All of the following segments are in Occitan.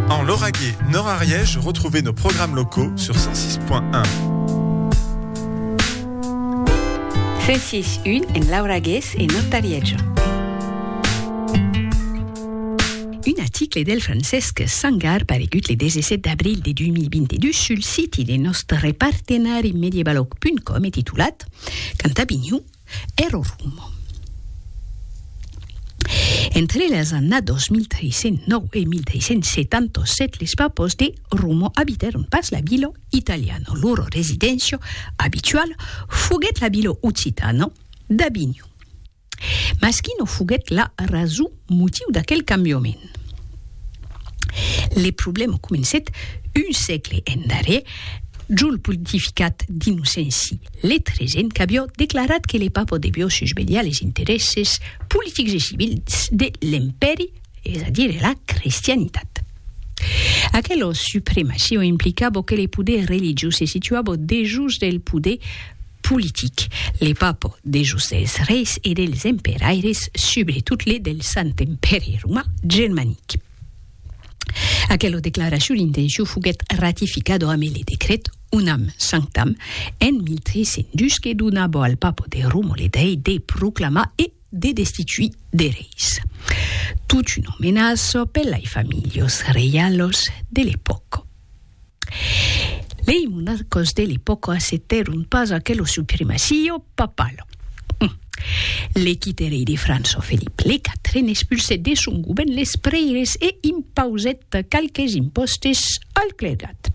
En Lauragais, Nord Ariège, retrouvez nos programmes locaux sur 106.1. 106.1 en Lauragais et Nord Ariège. Un article del Francesc Sangar paregut le 17 d'abril de 2022 sul siti de nostre partenari medievalog.com e titulat Cantabiniu e lo Rummo. Entre las annados 1309 e 1377 les papos de Rummo abitèron pas la Bilo Italiano, loro residéncia abituala foguèt la Bilo Occitano d'Avinho. Mas quina foguèt la rason Motiu d'aquel cambiament. Le problèma comencèt un sègle endarrèr jo lo pontificat d'Innocenci le XIII qu'avió declarat que le Papa devió susvelhar les interèsses politics e civils de l'Empèri, es a dire la cristianitat. Aquela supremacion implicava que le poder religiós se situava dejós del poder politic, les papos des josses reis e dels emperaires, subretot les del Sant Empèri Roman Germanic. Aquela declaracion d'intencion foguèt ratificada amé le decret Unam Sanctam en 1302 que donava al papo de Roma le dreit de proclamar e de destituir de reis. Tot una menaça per lai familhas reialas de l'epòca. Lei monarcos de l'epòca acceptèron pas aquelo supremacio papal. L'equiterei de França Felip le Quatren expulsèt de son govèrn les prèires e impausèt qualques impòstes al clergat.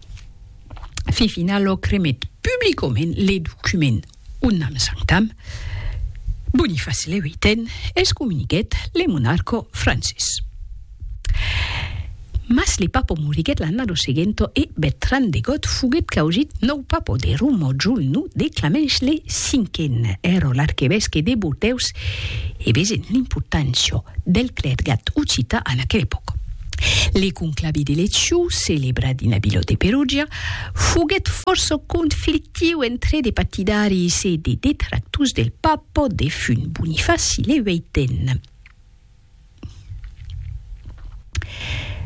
Fifinalò cremèt publicament le document Un an s'entam, Boniface le viiten excomuniquèt le monarco Francis. Mas le papo moriguèt l'annado seguento e Bertran de Got foguèt causit nòu papo de Roma jol no de Clamence le Cinquen, ero l'arquevesque de Bordeus e vesent l'importància del clergat occita en aquel epòca. Le conclavi de Leciu, celebrat dins la vila de Perugia, foguèt fòrça conflictiu entre de patidaris e de detractors del papa defunt Bonifaci le Ueiten.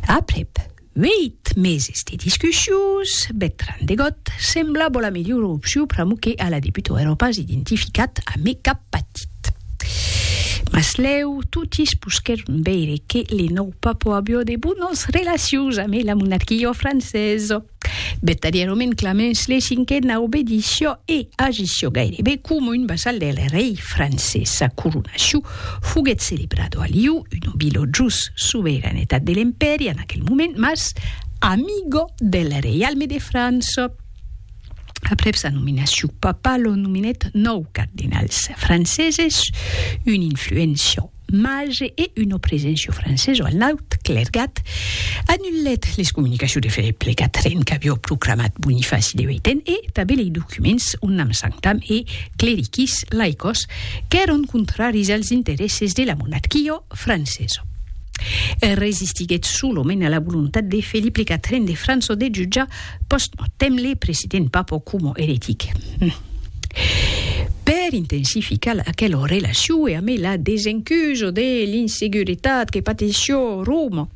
Aprèp ueit meses de discussions, Bertran de Got semblava la melhora opcion pr'amor que a la debuta èra pas identificat amé cap patit. Cat. Mas lèu totis posquèron veire que le nòu Papa avió de bonas relacions amé la monarquia francesa. Vertadièrament Clemens le Cinquen a obedició e agició gairebe coma un vassal del rei francés. Sa coronacion foguèt celebrada a Lió, una vila jos sobeiranetat de l'Empèri en aquel moment, mas amiga del reialme de França. Aprèp sa nominacion, Papa lo nominèt nòu cardinals franceses, un influéncia màger e una preséncia francesa a l'aut clergat, anulèt les comunicacions de Felip le Quatren qu'aviá proclamat Bonifaci de Hueiten e tanben lei documents unam sanctam e clericis laicos qu'èran contraris als interèsses de la monarquia francesa. Resistiguèt solament a la volontat de Felip le Quatren de França de jutjar Post-mortem, le president Papo coma eretic. Per intensificar aquela relacion e amé la desencuso de l'inseguretat que pateció Roma,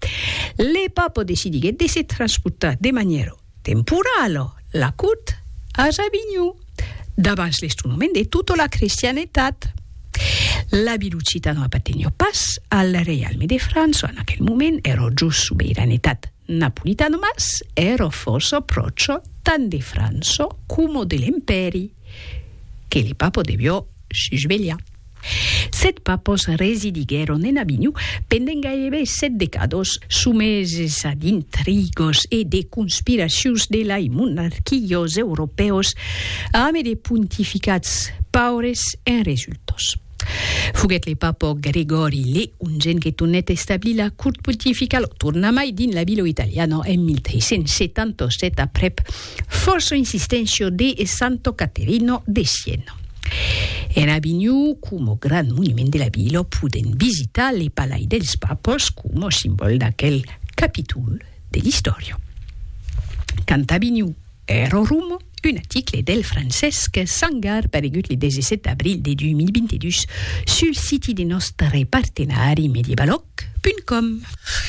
le Papo decidiguèt de se transportar de manièra temporala la cort as Avinhon, davans l'estronoment de tota la crestianetat. La Bilucita no apartenió pas al reialme de França en aquel moment, èra jos subiranetat Napolitano mas ero fòrça pròcho tant de Franço coma de l'Empèri que le papo devió sus velha. Set papos residiguèron en Avinho pendent gairebe set decados, someses a d'intrigos e de conspiracions de lai monarquilhos europèus ame de pontificats paures e resultos. Foguèt le papa Gregòri le Ongent que tornèt establir la cort pontificala, o tornamai, dins la vila italiana en 1377 aprèp fòrça insisténcia de Santa Caterina de Siena. En Avinhon, coma grand monument de la vila, podèm visitar le Palai dels Papas coma simbòl d'aquel capítol de l'istòria. Quand Avinhon, Errorum, un aticle del Francesc Sangar paregut le 17 d'abril de 2022 sul siti de nòstre partenari medievaloc.com.